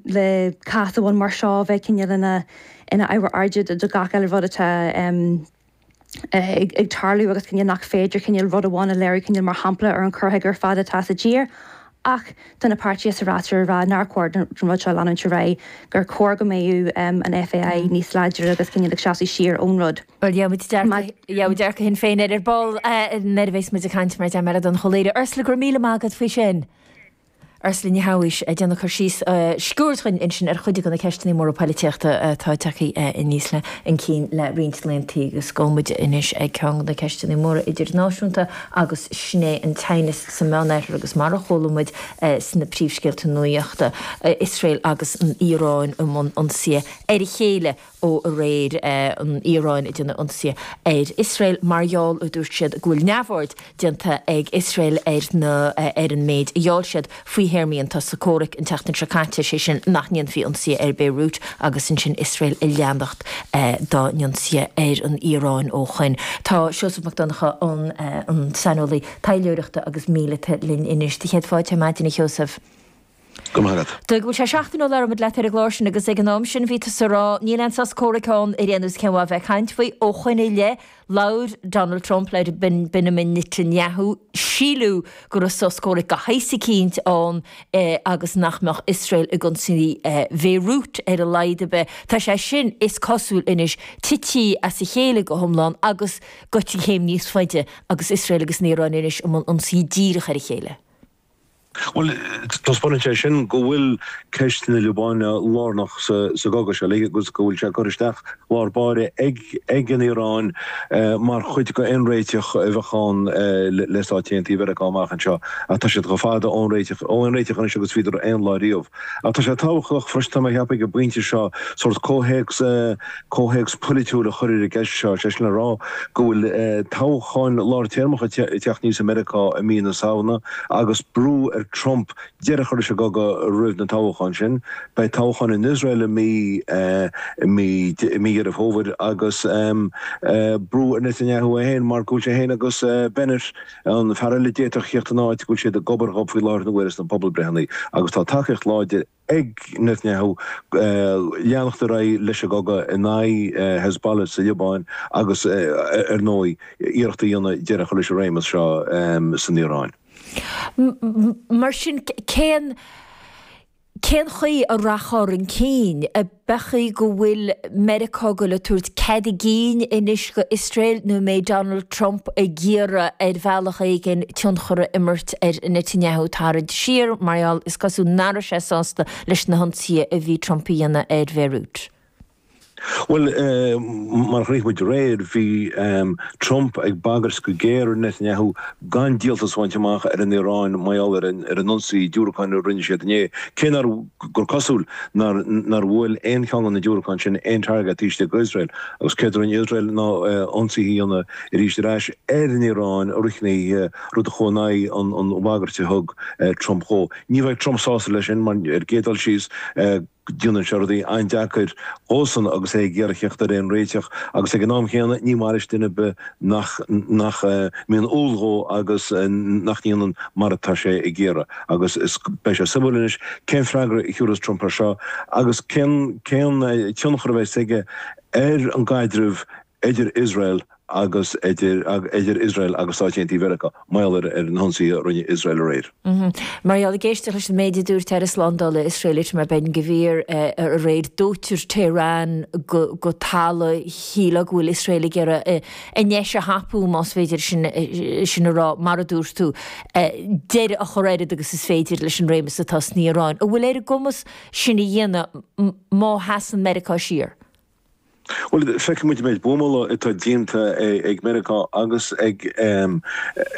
le cás amháin mar seo a bheith cineál ina ábhar airde do gach eile rud atá ag tarlú agus cineál nach féidir cineál rud amháin a léiriú cineál mar shampla ar an chur chuige ar fad atá sa tír ach tá na páirtithe freasúra ag rá nár chóir don rud seo leanúint ar aghaidh, gur chóir go mbeadh an FAI níos láidre agus cineál ag seasamh siar ón rud. Bhuel, gheobhaidh muid dearcadh Shinn Féin air ar ball nuair a bheas muid ag caint mar deirim le Donnchadh Ó Laoghaire, Ursula, go raibh míle maith agat faoi sin. Ursula Ní Shabhaois, ag déanamh cur síos sciuird dhúinn ansin ar chuid de na ceisteanna móra poilitíochta atá tagtha aníos chun cinn le roinnt laeantaí agus gabhfaidh muid anois ag ceann de na ceisteanna móra idirnáisiúnta agus sin é an teannas sa Meánoirthear agus mar a chuala muid sna príomhscéalta nuachta, Iosrael agus an Iaráin i mbun ionsaithe ar a chéile. ó aréir, an Iaráin ag déanamh ionsaithe ar Iosrael mar gheall, a dúirt siad, go bhfuil neamhaird déanta ag Iosrael ar na, ar an méid a gheall siad faoi théarmaí an tsosa comhraic an tseachtain seo caite, sé sin nach ndéanfaí ionsaithe ar Beirut agus ansin Iosrael ag leanacht dá n-ionsaithe ar an Iaráin ó shoin. Tá Seosamh Mac Donncha an an saineolaí taidhleoireachta agus míleata linn anois. Do chéad fáilte ar maidin a Sheosaimh. Go raibh maith agat. Tuigim go bhfuil sé seachtain ó labhair muid leat ar an gclár seo agus ag an am sin bhí tusa ag rá, níl aon sos comhraic ann ar aon nós cén mhaith a bheith ag caint faoi. Ó shoin i leith, labhair Donald Trump le Benjamin Netanyahu, síleadh go raibh sos comhraic de shaghas eicínt ann agus nach mbeadh Iosrael ag ionsaí Bhéirút ar a laghad ar bith. Tá sé sin, is cosúil anois, tite as a chéile go hiomlán agus gaite céim níos faide agus Iosrael agus an Iaráin anois i mbun ionsaí díreach ar a chéile. Bhuel, taispeánann sé sin go bhfuil ceist na Liobáine lárnach sa gcogadh seo, agus go bhfuil sé curtha isteach lár báire ag an Iaráin mar chuid d'aon réiteach a bheadh ann le Stáit Aontaithe Mheiriceá amach anseo. Ach tá siad chomh fada ón réiteach anois agus a bhíodar aon lá riamh. Ach tá sé tábhachtach freisin, tá mé ag ceapadh ag an bpointe seo, sórt comhthéacs a. Comhthéacs polaitiúil a chur i gceist seo, is é sin le rá go bhfuil toghcháin lártéarmacha ag teacht aníos i Meiriceá i mí na Samhna agus brú ar Trump deireadh a chur leis an gcogadh roimh na toghcháin sin. Beidh toghcháin in Iosrael i mí Dheireadh Fómhair agus brú ar Netanyahu é féin mar go bhfuil sé féin agus Bennett, an fear eile a d'fhéadfadh theacht ina áit, go bhfuil siad gob ar ghob faoi láthair na huaire sna pobalbhreitheanna agus tá tacaíocht láidir ag ag Netanyahu leanacht ar aghaidh leis an gcogadh in aghaidh Hezbollah sa Liobáin agus ar ndóigh iarracht a dhéanamh deireadh a chur leis an réimeas seo san Iaráin. Mar sin cén chaoi a rachfar chun cinn? Meas tú an bhfuil Meiriceá ag goil a tabhairt cead a gcinn anois go Iosrael nó an mbeidh Donald Trump ag iarraidh ar bhealach éigin tionchar a imirt ar Netanyahu tarraingt siar mar gheall, is cosúil, nach raibh sé sásta leis na hionsaithe a bhí Trump a dhéanamh ar Bhéiriút. Bhuel, mar a chonaic muid aréir, bhí Trump ag bagairt go géar ar Netanyahu gan díoltas a bhaint amach ar an Iaráin mar gheall ar an ionsaí diúracáin a rinne siad inné, cé nár. gur cosúil nár bhuail aon cheann de na diúracáin sin aon target istigh in Iosrael, agus céard a rinne Iosrael ná ionsaithe a dhéanamh arís ar ais ar an Iaráin a fhrithghníomhaigh rud a chuaigh in aghaidh an bhagairt a thug Trump dhó. Ní bheidh Trump sásta leis sin, mar ar gcéad dul síos déanann sé rudaí an-deacair dhósan agus é ag iarraidh theacht ar aon réiteach, agus ag an am chéanna ní maith leis duine ar bith nach mbíonn umhal dhó agus nach ndéanann mar atá sé ag iarraidh. Agus beidh sé suimiúil anois cén freagra a thiúrfas Trump air seo agus cén tionchar a bheas aige ar an gcaidreamh idir Iosrael agus idir Iosrael agus Stáit Aontaithe Mheiriceá, mar gheall ar na hionsaithe a rinne Iosrael aréir. Mar gheall ag éisteacht leis an méid a dúirt Aire Slándála Iosrael Itamar Ben Gvir aréir, dóitear Tehran go talamh. Shílfeá go bhfuil Iosrael ag iarraidh an deis a thapú, más féidir sin a rá, mar a dúirt tú, deireadh a chur oiread agus is féidir leis an réimeas atá san Iaráin. An bhfuil sé ar a gcumas sin a dhéanamh má sheasann Meiriceá siar? Bhuel, feiceann muid an méid buamála atá déanta ag Meiriceá agus ag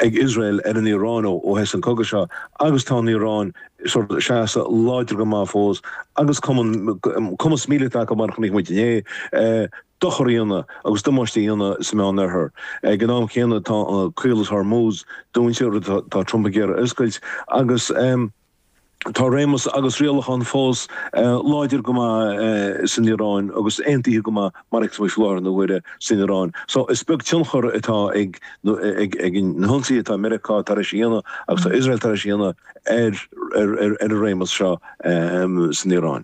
Iosrael ar an Iaráin ó thosaigh an cogadh seo agus tá an Iaráin ag seasamh láidir go maith fós agus cumas míleata acu mar a chonaic muid inné. dochar a dhéanamh agus damáiste a dhéanamh sa Mheán-Oirthear. Ag an am chéanna, tá Caolas Hormuz dúinte, rud atá Trump ag iarraidh a oscailt, agus tá réimeas agus rialachán fós láidir go maith san Iaráin agus aontaithe go maith, mar a fheiceas muid i láthair na huaire, san Iaráin. Só, is beag tionchar atá ag na hionsaithe atá Meiriceá tar éis a dhéanamh agus atá Iosrael tar éis a dhéanamh ar an réimeas seo san Iaráin.